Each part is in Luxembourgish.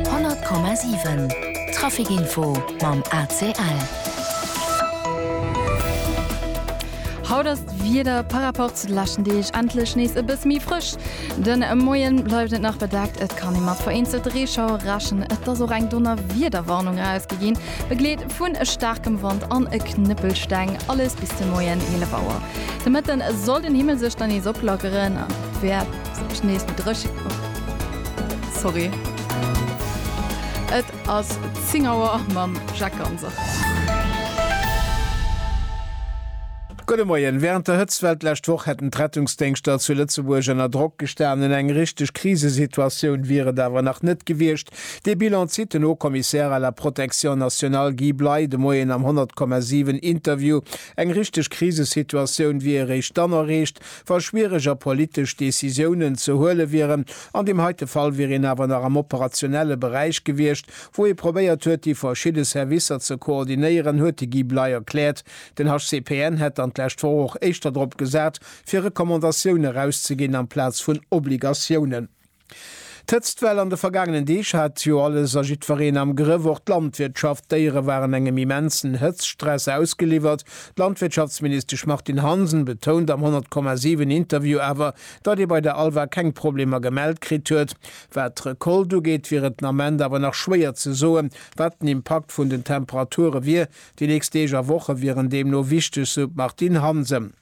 100,7 Trafic Info mam ACL. Haut ass d'Wieder par rapport zu de leschten Deeg endlech nees e bësse méi frësch. De Moie bleift et nach bedeckt, et kann ee mat vereenzelte Reeschauer rechnen. Et ass och eng Donnerwiederwarnung erausgi ginn, begleet vun staarkem Wand an e Knëppelsteng. Alles bis de Moien 11 Auer. De Mëtten soll den Himmel sech dann nees oplackeren, an et wäert sech nees méi dréche. Sorry. Et ass 10 Auer mam Jacques Ganser. Gudde Moien. Wärend der Hëtztwell d'lescht Woch hätten d'Rettungsdéngschter zu Lëtzebuerg ënner Drock gestanen. Eng richteg Krisesituatioun wier et awer nach net gewiescht. Dee Bilan zitt den Haut-Commissaire à la Protection nationale Guy Bley de Moien am 100,7 Interview. Eng richteg Krisesituatioun wier eréischt dann erreecht, wa schwiereg a politesch Décisiounen ze huele wieren. An deem heite Fall wier een awer nach am operationelle Beräich gewiescht, wou ee probéiert huet, déi verschidde Servicer ze koordinéieren, huet de Guy Bley erkläert. Den HCPN hätt dann d'lescht Woch och éischter drop gesat, fir Recommandatioune erauszeginn amplaz vun Obligatiounen. D'Hëtztwell an de vergaangenen Deeg hat jo alles a jiddwereen am Grëff, och d'Landwirtschaft. D'Déiere waren engem immensen Hëtztstress ausgeliwwert. D'Landwirtschaftsministesch Martine Hansen betount am 100,7 Interview awer, datt ee bei der Alva keng Problemer gemellt kritt huet. Wat d'Recolte ugeet, wier et den Ament awer nach schwéier ze soen, wat den Impakt vun den Temperature wier. Déi nächst Deeg a Woche wieren deemno wichteg, sou d'Martine Hansen.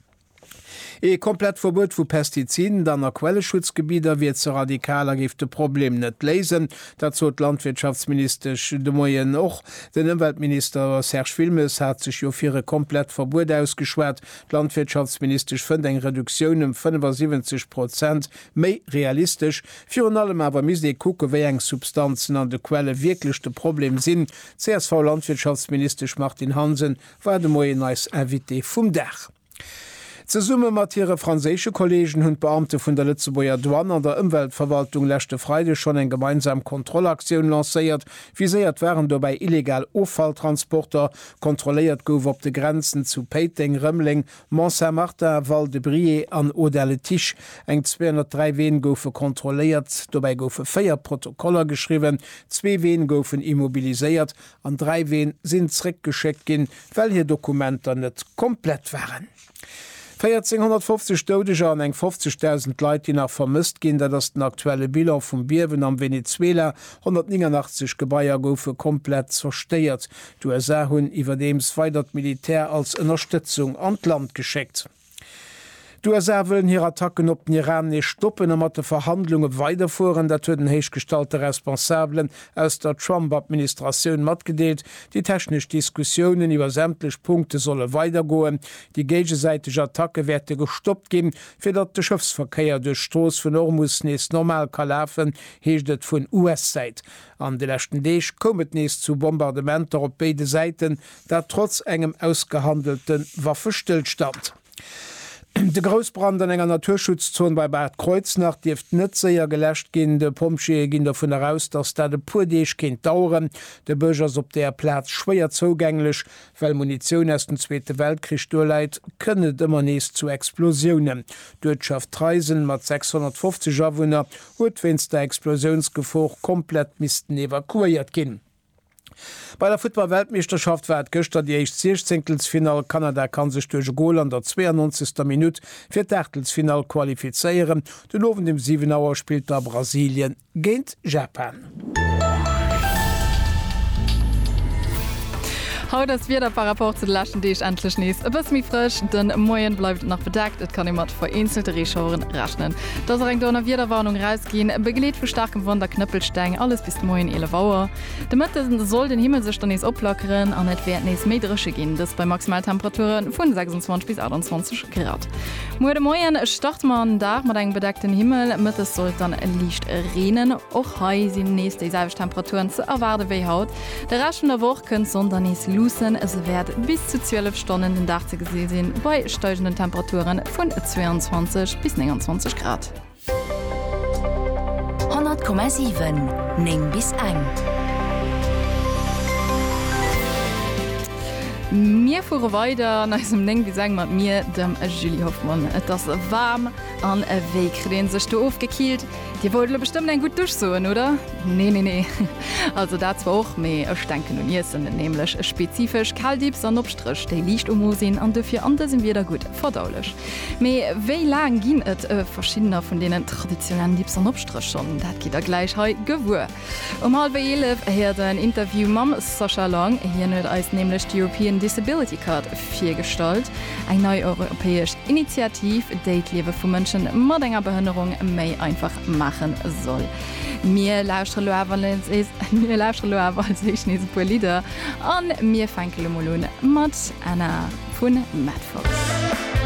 Ee komplett Verbuet vu Pestiziden dann a Quelleschutzgebidder wier ze radikal a géif de Problem net léisen. Dat sot d'Landwirtschaftsministesch de Moien och. Den Ëmweltminister Serge Wilmes hat sech jo fir e komplett Verbuet ausgeschwat. D'Landwirtschaftsministesch fënnt eng Reduktioun ëm 75 Prozent méi realistesch. Virun allem awer misst ee kucken, wéi eng Substanzen an de Quelle wierklech de Problem sinn. D'CSV-Landwirtschaftsministesch Martine Hansen war de Moien eis Invitée vum Dag. Zesumme mat hire franséische Kolleegen hunn d'Beamte vun der Lëtzebuerger Douane an der Ëmweltverwaltung leschte Freide schonn eng gemeinsam Kontrollaktioun lancéiert. Viséiert waren dobäi illegal Offalltransporter. Kontrolléiert gouf op de Grenzen zu Péiteng, Rëmeleng, Mont-Saint-Martin, Val-de-Briey an Audun-le-Tiche. Eng 203 Ween goufe kontrolléiert. Dobäi goufe véier Protokoller geschriwwen, zwee Ween goufen immobiliséiert An dräi Ween sinn zréckgeschéckt ginn, well hir Dokumenter net komplett waren. 1450 Doudeger an eng 50.000 Leit, déi nach vermësst ginn, dat ass den aktuelle Bilan vum Biewen am Venezuela. 189 Gebaier goufe komplett zerstéiert. D'USA hunn iwwerdeems weider d'Militär als Ënnerstëtzung an d'Land geschéckt. D'USA wëllen hir Attacken op den Iran nees stoppen a mat de Verhandlunge weiderfueren. Dat huet en héichgestallte Responsabelen aus der Trump-Administratioun matgedeelt. Déi technesch Diskussiounen iwwer sämtlech Punkte solle weidergoen. Déi géigesäiteg Attacke wäerte gestoppt ginn, fir datt de Schëffsverkéier duerch d'Strooss vun Ormus nees normal ka lafen, heescht et vun US-Säit. An de leschten Deeg koum et nees zu Bombardementer op béide Säiten, Dat trotz engem ausgehandelte Waffestëllstand. De Groussbrand an enger Naturschutzzon bei Bad Kreuznach dierft net séier geläscht ginn. De Pompjeeë ginn dovun eraus, datt dat e puer Deeg kéint daueren. De Bësch ass op der Plaz schwéier zougänglech. Well Munitioun aus dem Zweete Weltkrich do läit, kënnt et ëmmer nees zu Explosiounen. D'Uertschaft Treisen mat 650 Awunner huet wéinst der Explosiounsgefor komplett missten evakuéiert ginn. Bei der Futtball-Weltmeeschterschaft war et gëschter déi éischt Siechzéngtelsfinall. Kanada kann sech duerch e Gol an der 92. Minutt fir d'Aachtelsfinall qualifizéieren. Den Owend um 7 Auer spillt da Brasilien géint Japan. Haut ass d'Wieder par rapport zu de leschten Deeg endlech nees e bësse méi frësch. De Moien bleift et nach bedeckt, et kann ee mat vereenzelte Reeschaueren rechnen. Dass och eng Donnerwiederwarnung erausginn, begleet vu staarkem Wand a Knëppelsteng, alles bis de Moien 11 Auer. De Mëtte soll den Himmel sech dann nees oplackeren an et wäert nees méi dréche ginn, dëst bei Maximaltemperature vun 26 bis 28 Grad. Muer de Moien starte mer an den Dag mat engem bedeckten Himmel, Mëttes soll et dann liicht reenen. Och hei sinn nees déi selwecht Temperaturen ze erwaarde wéi haut. De Rescht vun der Woch kënnt d'Sonn dann nees luussen, se wäert bis zu 12 Stonnen den Dag ze gesi sinn, bei steigenden Temperature vun 22 bis 29 Grad. 100,7 9 bis eng. Mir fuere weider an eisem 9 bis eng mat mir, dem Julie Hoffmann. Et ass waarm, an wéi kritt ee sech do ofgekiilt? Dir wollt elo bestëmmt eng gutt Dusch soen, oder? Nee, nee, nee. Also dat zwar och, mee ech denken un Iessen, nämlech e spezifesch Caldips an Obstréch, déi liicht um Mo sinn an dofir an dësem Wieder gutt verdaulech. Mee wéi laang ginn et verschiddener vun deenen traditionellen Dips an Obstréch schonn? Dat gitt der gläich hei gewuer. Um hallwer 11 héiert der en Interview mam Sascha Lang. Hien huet eis nämlech d'European Disability Card virgestallt, eng nei europäesch Initiativ, déi d'Liewe vu Mënsche mat enger Behënnerung méi einfach maache soll. Mir lauschtere lo awer als éischt nees e puer Lidder a mir fänke lo mol un mat Anna vun Madfox.